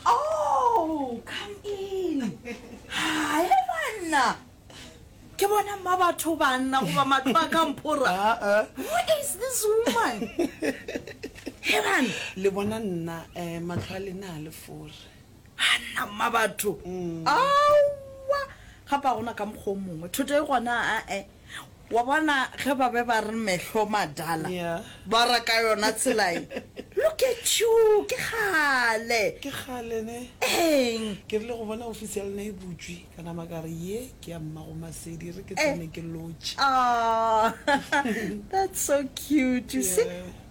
Oh, come in. Hi, banna. Ke bona mma batho banna goba matlo a ka mphora. Ah, ah. Who is this woman? He banna. Le bona nna eh matlo a lena a le fore. Hanna mma batho. Mm. Awa. Ga pa gona ka mokgwa o mongwe. Thoto e gona a eh. Wa bona ge ba be ba re mehlo madala Yeah. ba ra ka yona tsela ye look at you ke kgale ke kgale ne eng ke rile go bona ofisi ya lena e butšwe ka nama ka re ye ke ya mmago masedi re ke Eh. tsene ke lotšhe Ah, that's so cute you see Yeah.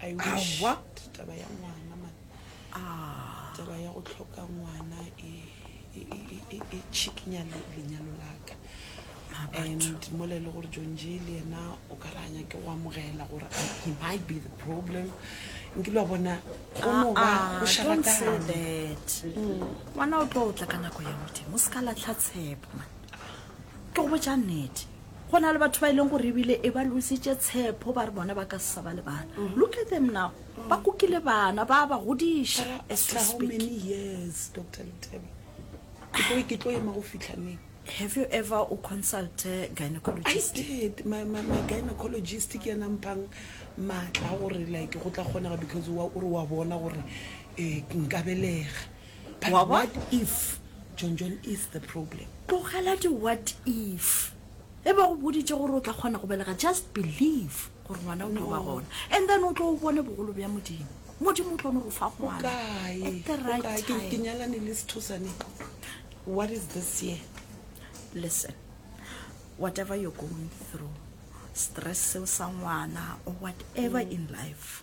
awa taba ya ngwana man ah. taba ya go tlhoka ngwana e, e, e, e, e tšhikinya lenyalo laka ah, and mola e le gore john j le yena o ka ranya ke go amogela gore he might be the problem nkile wa bona gonoba ah, go šarakane mm. ngwana o tlo o tla ka nako ya modimo o se ka latlha tshepo man ke go botsa nnete Go na le batho ba e leng gore ebile e ba lositše tshepo ba re bona ba ka se sa ba le bana. Mm-hmm. Look at them now. Ba kukile bana ba ba godiša as we speak. How many years Dr. Letebe? Ke tlo ke tlo ema go fihla neng? Have you ever o consult gynecologist? I did. My my my gynecologist ke ena mpang matla gore like go tla kgonega because wa o re wa bona gore eh nka belega. But what if John John is the problem? Tlogela di what if. E ba go boditše gore o tla kgona go belega just believe gore ngwana o tlo ba gona and then o tlo o bone bogolo bja modimo. Modimo o tlo no go fa ngwana at the right time. Ke nyalane le sethosane. What is this year? Listen. Whatever you're going through, stress seo sa ngwana or whatever in life.